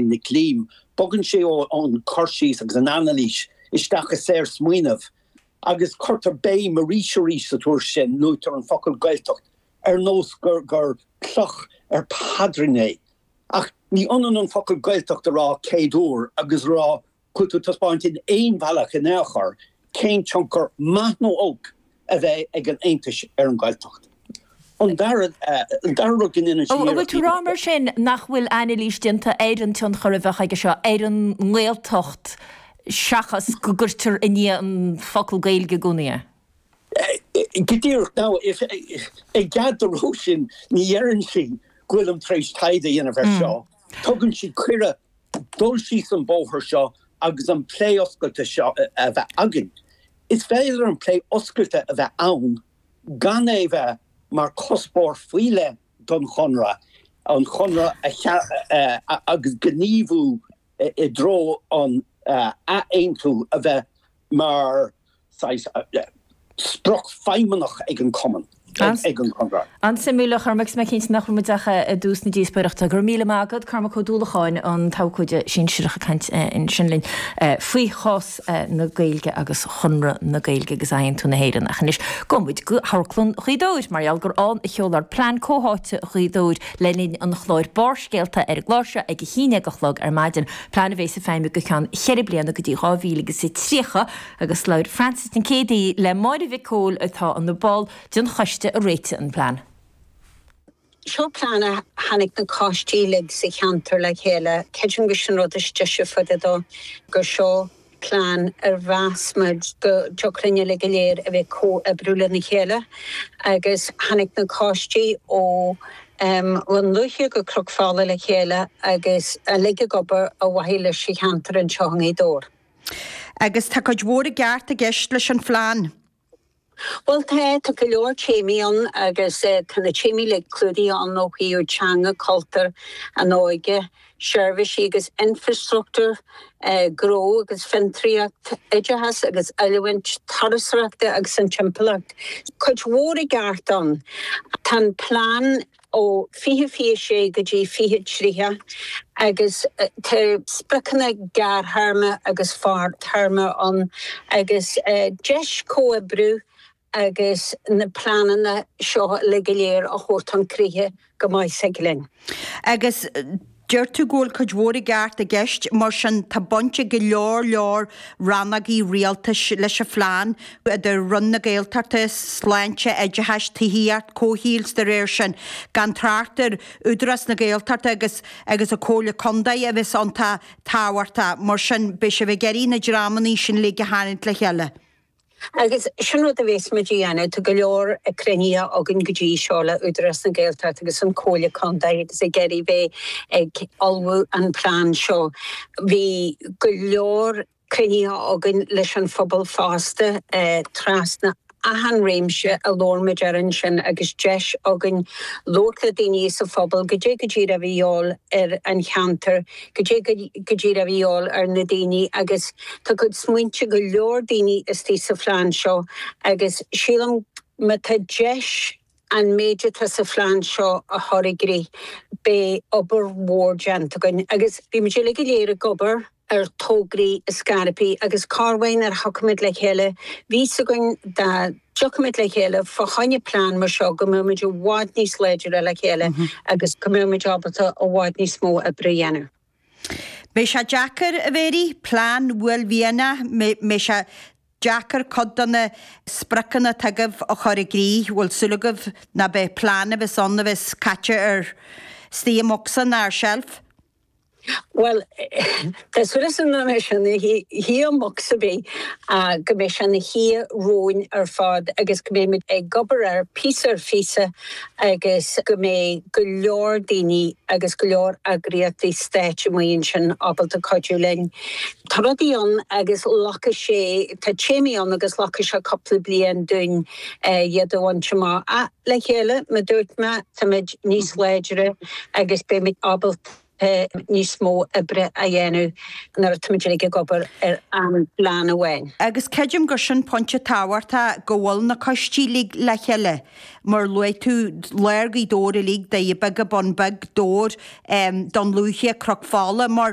Nic Liam. Bogann sé ón chur síos agus an anailís isteach i saor smaoineamh agus cuirtear béim arís arís sa téacs sin luaitear an focal Gaeltacht ar nós gur cloch ar phaidrín é ach ní ionann an focal Gaeltacht a rá céad uair agus a rá Caithfidh tú taispeáint in aon bhealach in aon chor cén tionchar, maith nó olc, a bheidh ag an aontú ar an Ghaeltacht. An dara rud go ndéanann sé iarracht a dhéanamh de. An bhfuil tú a rá mar sin nach bhfuil anailís déanta ar an tionchar a bheadh aige seo ar an nGaeltacht seachas go gcuirtear i ndiaidh an focal Gaeilge i gcónaí é? Go díreach. Now, i gcead do Róisín, ní deireann sí go bhfuilim tar éis taighde a dhéanamh air seo. Tugann sí cuireadh dul síos an bóthar seo agus an plé oscailte seo a bheith againn. Is féidir an plé oscailte a bheith ann gan é bheith mar chuspóir faoi leith don Chonradh, an Conradh a sheas agus gníomhú i dtreo an ath-aontú a bheith mar saghas sprioc feidhmeannach ag an Cumann, ag an Conradh. An-suimiúil, a Chormaic, is mé cinnte nach raibh muid ach i dtús na díospóireachta. Go raibh míle maith agat, Cormac Ó Dúlacháin, an t-abhcóide sinsearach, ag caint ansin linn faoi chás na Gaeilge agus Chonradh na Gaeilge agus athaontú na hÉireann. Ach anois, gabhfaidh muid go hAmharclann Ghaoth Dobhair mar gheall gur ann a seoladh Plean Comhtháite Ghaoth Dobhair le linn an chláir Barrscéalta ar an gcéad seo ag a haon déag a chlog ar maidin, plean a bheas ag feidhmiú go ceann cheithre bliana go dtí 2030. agus labhair Frances i gcéaduair le Máire Uí Chomhaill atá ina ball den choiste a réitigh an plean. Seo plean a tháinig na coistí uilig sa cheantar le chéile. Creidim gur sin an rud is deise fá dtaobh dó gur seo plean ar mheas muid go dtiocfadh linn uilig go léir a bheith ag comhoibriú lena chéile agus tháinig na coistí ó Dhún Lúiche go Cnoc Fola le chéile agus uilig ag obair ar mhaithe leis an cheantar anseo i nGaoth Dobhair. Agus tá cuid mhór i gceart i gceist leis an phlean. Bhuel tá, tá go leor téamaí ann agus tá na téamaí uilig clúdaithe ann ó thaobh teanga, cultúr, an óige, seirbhísí agus infreastruchtúr, gnó agus fiontraíocht, oideachas agus oiliúint, turasóireachta agus an timpeallacht. Cuid mhór i gceart ann. Tá an plean ó fiche fiche sé go dtí fiche tríocha, agus tá spriocanna gearrthéarma agus fadtéarma ann, agus deis comhoibriú agus na pleananna seo uilig go léir a thabhairt chun críche go mbeidh sé aici linn. Agus Deir tú go bhfuil cuid mhór i gceart i gceist, mar sin tá baint ag go leor leor rannógaí rialtais leis an phlean, idir Roinn na Gaeltachta, Sláinte, Oideachais, Tithíocht, Comhshaoil, is dá réir sin gan trácht ar Údarás na Gaeltachta agus agus an Comhairle Contae a bheas iontach tábhachtach, mar sin beidh sibh ag iarraidh na dreamanna sin uilig a tharraingt le chéile. Agus sin rud a bhéas muid a dhéanamh. Tá go leor cruinnithe againn go dtí seo le Údarás na Gaeltacht agus an Comhairle Contae agus ag iarraidh bheith ag ullmhú an plean seo. Bhí go leor cruinnithe againn leis an phobal fosta trasna achan réimse a labhair muid air ansin agus deis againn labhairt le daoine sa phobal goidé go díreach a bhí a dhíobháil ar an cheantar Goidé go díreach a bhí a dhíobháil ar na daoine agus tá cuid smaointe go leor daoine istoigh sa phlean seo agus sílim má tá deis an méid atá sa phlean seo a chur i gcrích beidh obair mhór déanta againn agus bhí muid uilig go léir ag obair ar tograí scaipthe agus cárbháin ar thiocfaimid le chéile bhí a fhios againn dá dtiocfadh muid le chéile fá choinne plean mar seo go mbeadh muid i bhfad níos láidre le chéile agus go mbeadh muid ábalta i bhfad níos mó oibre a dhéanamh. Beidh sé deacair, a Mhary. Plean uaillmhianach. Mbeidh sé deacair cuid de na spriocanna atá agaibh a chur i gcrích. Bhfuil súil agaibh ná beidh plean a bheas ann a bheas caite ar istigh i mbocsa nó ar sheilf? Bhuel, tá súil agam nach mbeidh sé ina shuí i mbocsa ar bith ach go mbeidh sé ina shuí romhainn ar fad agus go mbeimid ag obair air píosa ar phíosa agus go mbeidh go leor daoine agus go leor eagraíochtaí stáit amuigh ansin ábalta cuidiú linn. Tá rudaí ann agus glacfaidh sé, tá téamaí ann agus glacfaidh sé cúpla bliain dúinn iad a bhaint amach. Le chéile, mar a dúirt mé, táimid níos láidre agus beimid ábalta níos mó oibre a dhéanamh nuair atáimid uilig ag obair ar an phlean amháin. Agus creidim gur sin pointe tábhachtach go bhfuil na coistí uilig le chéile. Mar a luaigh tú, lár Ghaoth Dobhair uilig, Doirí Beaga, Bun Beag, Dobhar, Dún Lúiche, Cnoc Fola, mar.